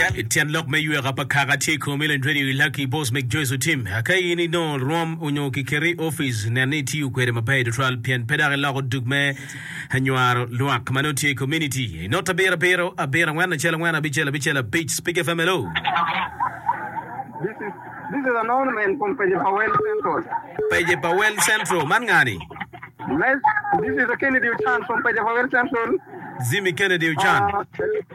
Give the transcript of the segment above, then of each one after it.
Tyen lok me yweka pa kaka tye i komi leng tweri ilaki i bos meg Joyce Otim. Ka in inongo rwom onyo kiketi i opic, nen ni itiyo kwede maber tutwal pien pe dok iloko dug me nywaro lwak ma nongo tye i kominiti. I not abiro abiro, abiro angwen, acel angwen, abicel abicel, abic, Speke FM Hello!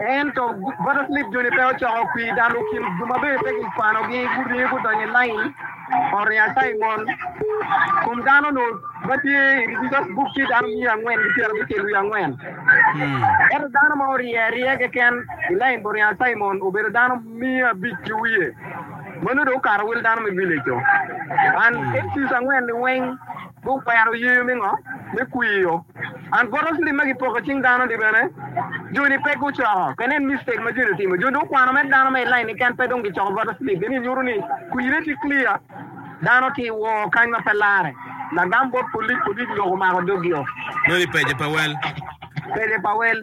Ento Joseph Smith Joni pe ocoko kwir dok lukin jo ma bene pe kikwanogi guringo gudonyo i lain poto Nyasaye mon. Kom dano onongo ma tye i Register's Book tye dano miya angwen ki pyerabicel ki wiye angwen. Ento dano ma orye aryeya keken i lain poto Nyasaye mon obedo dano miya abic ki wiye, ma nongo dong okato wel dano me village-co. An Exodus angwen-ni weng. Gukwero yer me ngo? Me kwiyo. And bottle slip ma gipoko icing dano ni bene joni pe gucoko. Ka nen mistake ma joni otimo. Joni dong okwano mere dano ma i line keken pe dong gicoko bottle slip eni nyuto ni kwine tye clear. Dano tye i wor kany ma pe lare. Lagam bot polic, polic lok omako dog yo. Nongo i page pa wel. Page pa wel.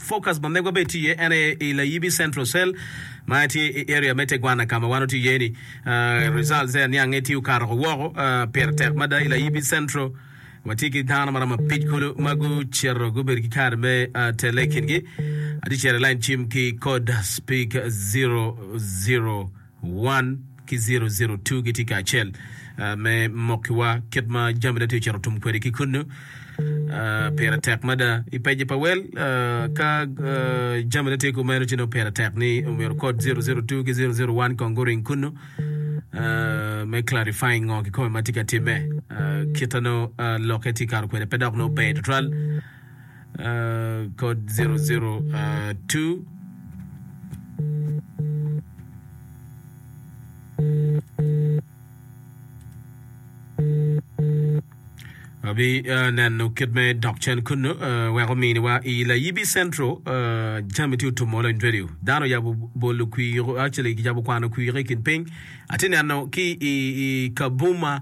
Focus ma megwa bene tye iye en aye i Layibi Central Cell ma tye i area me Tegwana ka ma wan watye iye ni. Results aye aniange tye okato ko woko. Pire tek mada i Layibi Central. Watye ki dano maromo abic kulu ma gucito gubedo ki kadi me tele i kingi adicel i lain cim ki kod Speak Zero Zero. 1 ki 002 gitye kacel me mokkiwa kit ma jamine tye ocito tum kwede ki kunnu. Pire tek mada i pejje pa wel ka jamine tye kumeno ci nongo pire tek ni omyero kod 002 ki 001 kong guring kunnu me clarifying ngo kikome ma tye ka timme. Kit ma nongo lokke tye kato kwede pe dok nongo ber tutwal. kod 002. Abineno kit me dok cen kunnu wek ominiwa i Layibi Central jami tye otum olo in radio. Dano oyabo bolo kwir, actually kicabo kwano kwir i kin piny. Atye neno ki i Kabuma.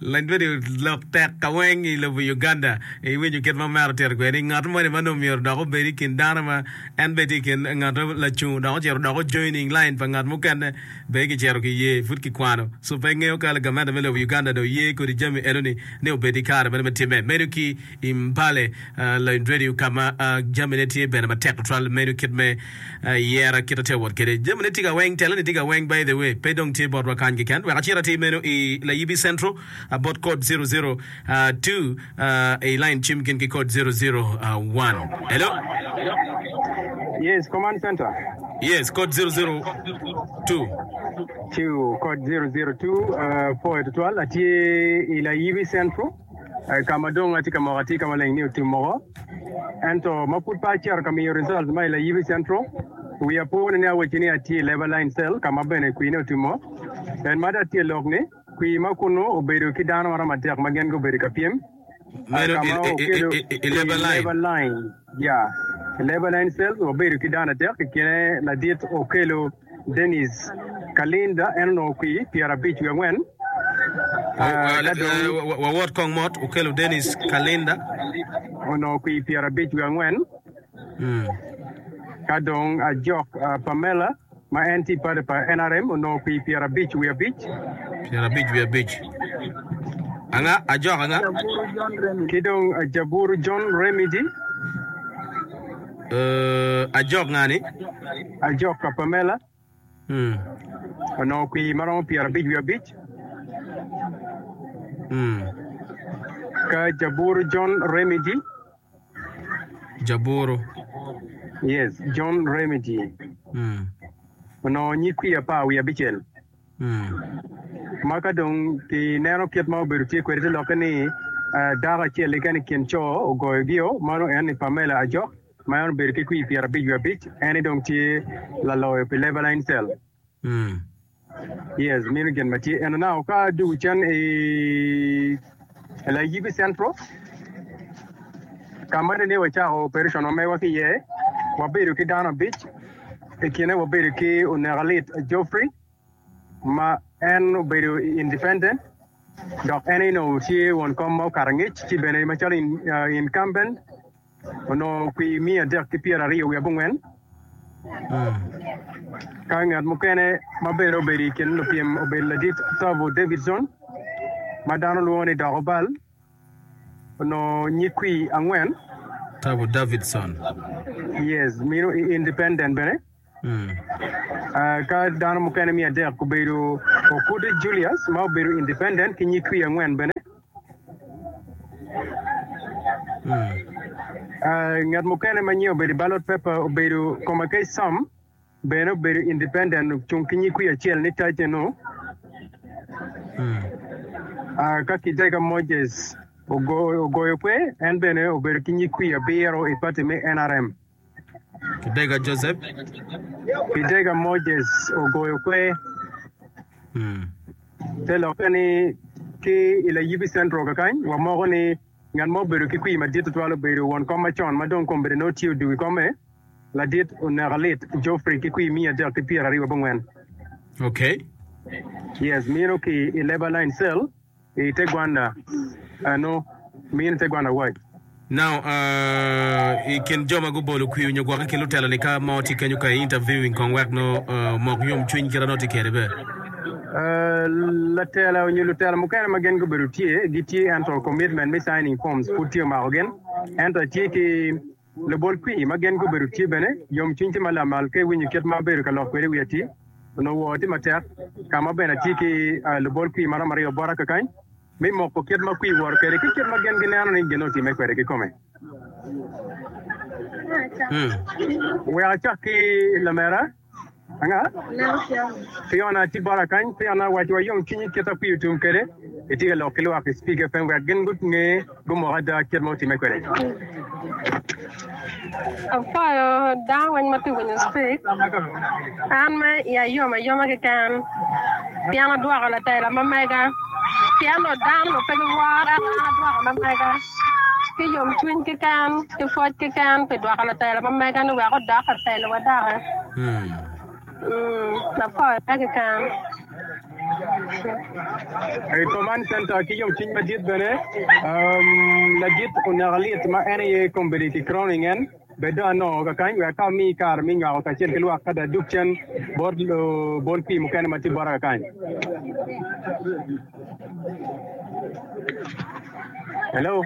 Lanyodi lok tek kaweng i lobo Uganda. Iwinyo kit ma omera otito kwede ni ngat moni ma nongo myero odok obed i kin dano ma en bene tye i kin ngat lacung dok ocito odoko joining line pa ngat mukene bene kicito kiye pud kikwano so pe ngeyo ka gamente me lobo Uganda dong oye kodi jami enoni ni obed i kare meno me timme. Medo ki i mbale loyo radio ka ma jamine tye bene matek tutwal meno kit me yera kit atye wot kede jamine tye ka weng tela ni tye ka weng by the way pe dong tye botwa kany keken wek acit atir meno i layibi central bot code 002 i line cim gin ki code 001 hello Yes, command center. Yes, code 002. Two, code 002, uh, poet twal, atye ila yibi central. eh, ka ma dong atye ka moko atye ka maleng ni otim moko, ento ma pud pe acito ka miyo result ma i Layibi Central, wiya po ni ni awacci ni atye i Labour Line Cell ka ma bene kwine otimo. En ma dong atye lok ni, kwi ma kunu obedo ki dano maromo adek ma gin gubedo ka pyem, eh, Meno ka i, ma i, i, okedo i, i, i Labour Line. Labour Line. Ya, i Lebanon Cells wabedo ki dano adek i kine ladit Okello Denis Kalinda en onongo kwi pyera abic wiye angwen ka dong Wawot kong mot Okello Denis Kalinda onongo kwi pyera abic wiye angwen ka dong Ajok Pamela ma en tye i pati pa nrm onongo kwir pyera abic wiye abic. Pyera abic wiye abic. Anga? Ajok anga? Ajaburu John Remedy. Ki dong Ajaburu John Remedy. Uh, Ajok nga ni? Ajok ka Pamela. Mm. Onongo kwir ma romo pyera abic wiye abic. Mm. Ka Ajaburu John Remedy. Jaburu. Yes, John Remedy. Mm. Onongo nyig kwi apar wiye abicel. Mm. Ma ka dong kineno kit ma obedo tye kwede te lokke ni eh, dako acel keken i kin co ogoyogio, mano en ni Pamela Ajok, ma en obedo ki kwi pyerabic wiye abic, en ni dong tye laloyo pi Lebaline Cell. Yes, meno gin ma tye eno nao ka dye wucen i Layibi Central ka ma nene wacako operation wa megwa ki iye. Wabedo ki dano abic, i kine wabedo ki Onekalit Geoffrey ma en obedo independent dok en aye onongo tye won kom ma okato angec ci bene macalo incumbent onongo kwi miya adek ki pyeraryo wiye abongwen. Ka ngat mukene ma bene obedo i kin lupyem obedo ladit Tavo Davidson, ma dano lwongo ni Dok Obal, onongo nyig kwi angwen. Tavo Davidson. Yes, mino i Independent bene. Ka dano mukene miya adek gubedo Okude Julius ma obedo independent ki nyig kwi angwen bene. Ngat mukene ma nyiye obedo i ballot paper obedo Komakei Sam bene obedo independent ocung ki nyig kwi acel ni Taje Nu. Ka Kidega Moses Ogoyo kwe en bene obedo ki nyig kwi abiro i party me nrm. Pidega Joseph. Pidega Moses ogoyo kwer. Mm. Te lokke ni ki i Layibi Central kakany wamoko ni ngat ma obedo ki kwir madit tutwal obedo won kom macon ma dong kombedde nongo tye odugo i komme ladit oneka lit Geoffrey ki kwir miya adek ki pyeraryo wabongwen. Okay. Yes, mino ki i Labor Line Cell. I te gwanda eno, min i te gwanda wac. Now, uh, i kin jo ma gubolo kwi nyo gwoke ki lutelo ni ka mo tye kenyo ka i interviewing kong wek no uh, omok yom cwiny kit ano tye kede be. Uh, latela onyo lutela mukene ma gen gubedo tye gitye ento commitment me signing forms pud tye omako gen ento atye ki Lubol pii ma gen gubedo tye bene yom cwiny tye ma lamal ka iwinyo kit ma abedo ka lok kwede wi atii. Onongo woo tye matek ka ma bene atye ki lubol pii ma romo aryo bota kakany me moko kit ma kwii woto kwede ki kit ma gen gineno ni gin otimme kwede kikome. Wek acak ki lamera. Piona atye bota kany. Piona, waci wa yom cwinyi kit ma kwir otum kwede. Itye ka lok ki lwak i Speak FM wek gin gunge gumok ada kit ma otimme kwede. ki yomcwiny keken, ki pwoc keken pi dwoko latela ma mega-ni wek odok i telowa doki. Mm, lapore pe keken. I Command Center ki yomcwiny madit bene, um, ladit oneka lit ma en aye kombedi ki crowning en. Bed dong anongo kakany wek aka omi kare me nywako kacel ki lwak kadi adug cen bot obol pii mukene ma tye bota kakany. Hello.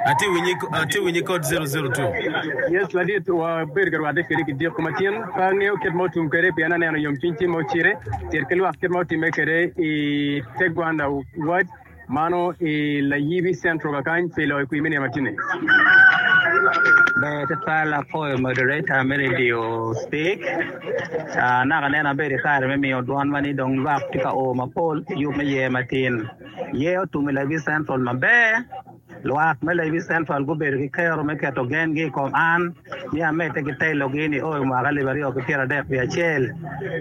Atye winyi, atye winyi kod 002. Yes, ladit, wabedo ka rwatte kede ki diko matin. Pe angeyo kit ma otum kede pien aneno yomcwiny tye ma ocire. Cit ki lwak kit ma otimme kede i te gwanda wad. Mano i Layibi Central kakany pi loyo kwir me nino matine. Ber tutwal apwoyo moderator me radio stick anaka neno abedo i kare me miyo dwon ma ni dong lwak tye ka o mapol pi yub me yer matin. Yer otum i Layibi Central maber. Lwak me Levi Central gubedo ki kero me keto gengi i kom an, ni amedde ki telogi ni o i mwaka alip aryo ki pyera dek wiye acel.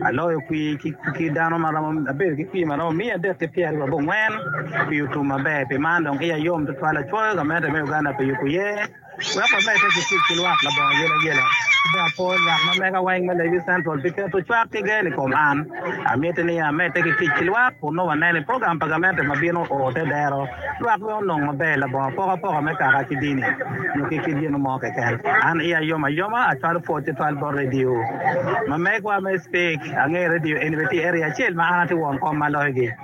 Aloyo kwi ki dano ma romo, abedo ki kwi ma romo miya adek ki pyera aryo abongwen pi otum maber. Pi man dong iya yom tutwal acoyo gamente me Uganda pi yubo ye. Wek wabed pe ki tic ki lwak labongo yen ayena, pe apor ngat ma mega weng me Levi Central pi keto cwak ki gen i kom an. Amiti ni amedde ki tic ki lwak kun nongo waneno ni program pa gamente ma bino oo te dero lwak me onong maber labongo apokapoka me kaka ki dini nyo ki kit gin mo keken. An iya yom ayoma acwalo pwod tutwal bot redio ma megwa me Speke. Angeyo redio eni bene tye i area acel ma an atye won kom ma loyo gi.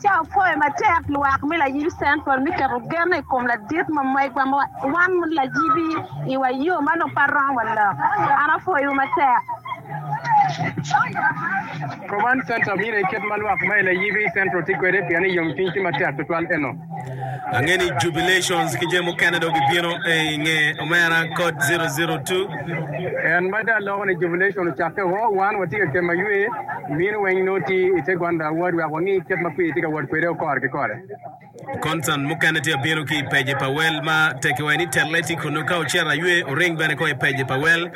Ca opwoyo matek lwak me Layib Central me keto genne i kom ladit ma megwa ma wan layibi i wa yo ma nongo pe rom wa lok. An apwoyowu matek. Roman Central mine kit ma lwak ma i Layib Central tye kwede pien ni yomcwiny tye matek tutwal eno. Ange ni jubilations ki jami mukene dong gibino i nge omera kod 002. En madde aloko ni jubilation ocakke o, wan watye ka kema ywe mini weng nongo ti i te gwanda awod wek wangi kit ma kwir tye ka wot kwede o kore ki kore. Concern mukene tye abino ki i page pa wel ma tekiwa ni telle tye kunu ka ocito aywe oring bene ko i page pa wel.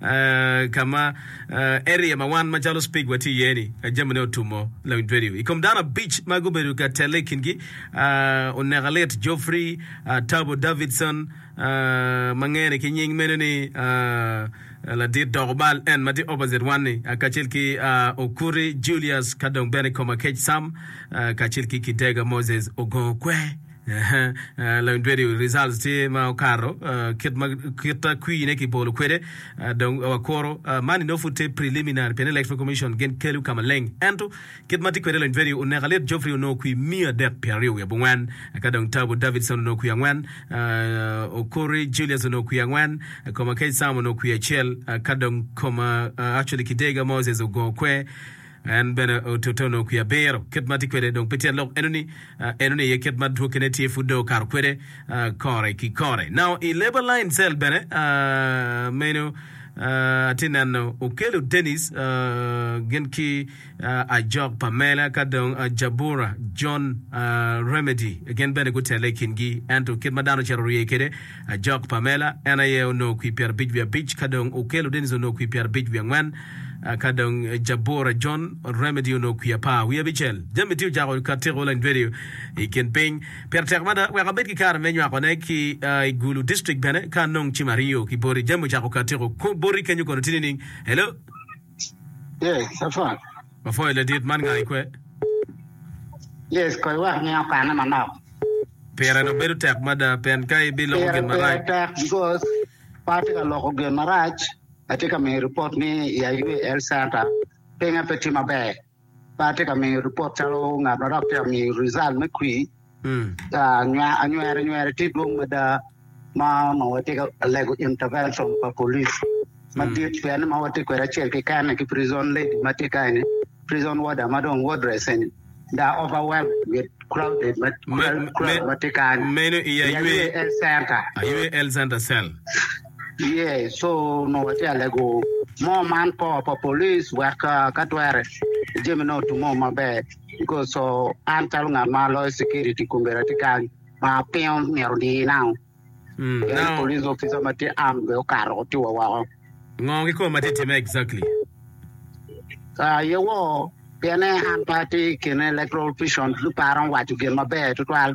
ka ma area ma wan macalo Speke watye iye-ni, jamine otumo lawiny radio. I kom dano abic ma gubedo ka telle i kingi, oneka lit Geoffrey Tabo Davidson, ma ngene ki nying meno ni Ladit Doko Bal, en ma tye opposite wan-ni, kacel ki Okuri Julius, ka dong bene Komakec Sam, kacel ki Kidega Moses Ogookwe. Long tweri results tye ma okato kit ma kit kwir ne ki bolo kwede dong wa kuro man ino pud tye preliminary pien electoral commission gin kelu ka maleng ento kit ma tye kwede long tweri oneko alit Geoffrey onongo kwir miya adek pyera ryo wiye abongwen eka dong Tabu Davidson onongo kwir angwen Okori Julius onongo kwir angwen Komakech Sam onongo kwir acel eka dong Koma actually Kidega Moses ogo kwer En bene otono kwi abiro. Kit ma tye kwede dong pe tye alok enoni, enoni aye kit ma dwokine tye pud dong okato kwede kore ki kore. Now i labor line cell bene meno atye neno Okello Dennis gin ki Ajok Pamela ka dong Jabura John Remedy gin bene gutelle i kingi ento kit ma dano ocito rye kwede Ajok Pamela, en aye onongo kwir pyerabic wiye abic, ka dong Okello Dennis onongo kwir pyerabic wiye angwen, ka dong Jabura John Remedy onongo kwir apar wiye abicel. Jami tye ocako ka tiko leng dwedi i kin piny. Pire tek mada wek abed ki kare me nywakone ki i Gulu district bene ka anong cim aryo ki boti. Jami ocako ka tiko boti kenyo kono tye nining? Hello? Yes, apwony. Apwoyo ladit man nga ikwe? Yes, kong iwek ni okane manok. Pire dong bedo tek mada pien ka ibiloko Pire gin pire marac tek because pe atye ka loko gin marac, atye ka miyo ripot ni i aywe health center pinge pe tye maber. Pe atye ka miyo ripot calo ngat ma dok tye ka miyo rizal me kwir. Anyweranywer tye dwong mada ma watye ka lego intervention pa polic madit pien ni ma watye kwede acel keken-ni ki prison lady ma tye ka eni, prison warder ma dong wardress eni dong overwhelmed with crowded ma tye ka ni. Meno i aywe health center cell. Iye co onongo watye ka lego moo man kor pa police wek ka twere jami ne otimme maber because co an calo ngat ma aloyo security kome atye kany ma pingo myero odiye nao pien police officer ma tye armed bene okato ci otiyo wa woko. Ngo kikome ma tye ka timme exactly? Aa iye woo pien en pe atye i kin electoral official me paro me waco gin maber tutwal.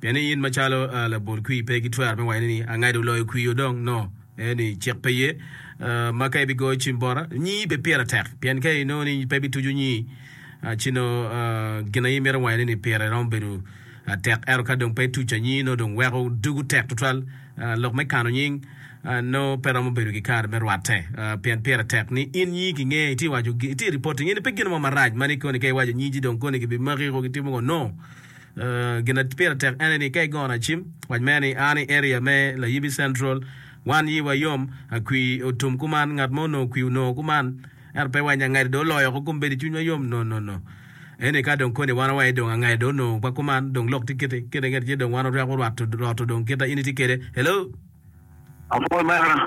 Pien in macalo labol kwir pe gitwero me waco ni, Angado loyo kwir-wu dong, no, en ni cik pe ye. Ma ka ibigoyo cim bota, nyii pe pire tek, pien ka inongo ni pe bituco nyii, ci nongo gin aye imito wacone ni pire romo bedo tek. Ento ka dong pe ituco anyii, nongo dong weko dugu tek tutwal. Lok me kano nying nongo pe romo bedo kikare me rwatte, pien pire tek ni in nyii kinge, itye waco, itye reporting. Eni pe gin mo marac ma ni koni ka iwaco nyiji dong koni gibimaki ko gitimo ngo, no. Gin ma pire tek ene ni ka igoyo nacim, wac mere ni an i area me Layibi Central, wan yiwa yom, akwii otum kuman, ngat mo onongo kwii onongo kuman, ento pe wanya ngede dong oloyo oko kong bedi cwinywa yom no no no. Eni ka dong koni wan awaye dong angede dong onongo wa kuman, dong lok tye kiti, kene kene tye dong wan otweko rwato roto dong kita in itye kede. Hello. Apol mera.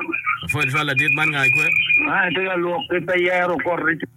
Apol twal ladit man nga ikwe? An atika lwok pe pe yero koti.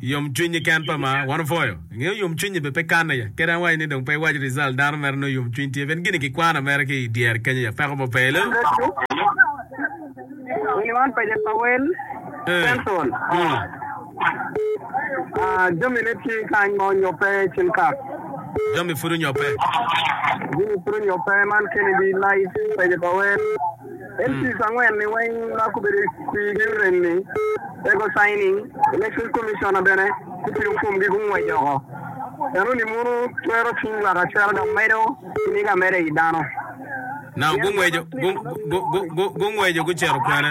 Yom cwiny ni ken pa ma wan opwoyo. Ingeyo yom cwiny ni be pe kanne ya. Kadi an awaco ni dong pe iwac result dano mere nongo yom cwiny tye. Ben gini ki kwana mere ki i dyere kenyo ya peko mo pe. Hello. En piece angwen ni weng ma gubedo i Ukraine ni ego signing, Election Commissioner bene gutino form gi gungwec oko. Eno ni mono twero cwiny lwak acel dok medo kinig ameda i yi dano. Now gungweco gungweco gucito kwene?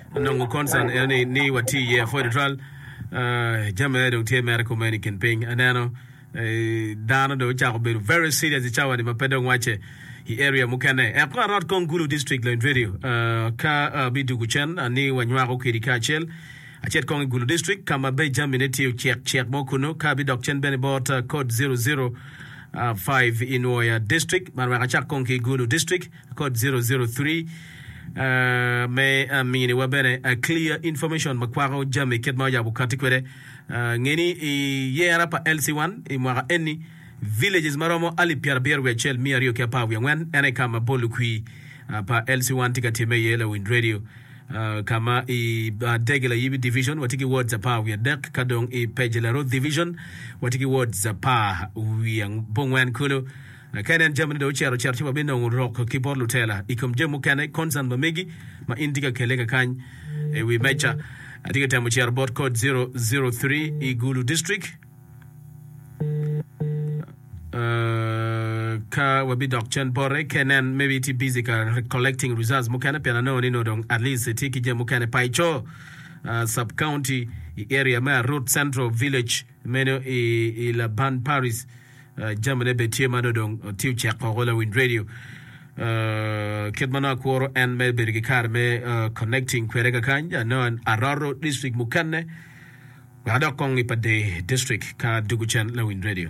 Onongo concern en ni ni wati iye apwod tutwal. Jami aye dong tye mere kumeno i kin piny. Aneno dano dong ocako bedo very serious i cawa ni ma pe dong wacce i area mukene. Eko arot kong Gulu District Lony Radio ka abi dugu cen ni wanywako kedi kacel. Acit kong i Gulu District ka ma be jami ne tye ocek cek mo kunu ka abi dok cen bene i bot Code 005 i Nwoya District. Man wek acak kong ki Gulu District. Code zero zero three, Me miniwa bene clear information ma kwako jami kit ma oyabo okatti kwede, nge ni i yera pa LC1 i mwaka eni, villages ma romo alip pyerabiro wiye acel miya aryo ki apar wiye angwen en aye ka ma bol lukwi pa LC1 tye ka timme iye, Lawiny Radio, ka ma i Dege Layibi Division watye ki wards apar wiye adek, ka dong i Peje Larot Division watye ki wards apar wiye abongwen kulu. Nakeni en jamine dong ocito ocito ci wabinongo rok ki bot lutela. I kom jami mukene, concern ma megi ma in itye ka kelle kakany i wi meja. Atye ka temo cito bot code zero zero three i Gulu District. Ka wabidok cen bote, kenen maybe itye busy ka collecting results mukene pien anongo ni nongo dong at least itye ki jami mukene pa ico. Sub County i area me Arut Central Village meno i Laban Parish. Jamine bene tye ma nongo dong tye ocek woko lawiny radio. Kit ma nongo akworo en me bedo ki kare me connecting kwede kakany, I know aroto district mukene wek adok kong i pa Dei district ka dugu cen lawiny radio.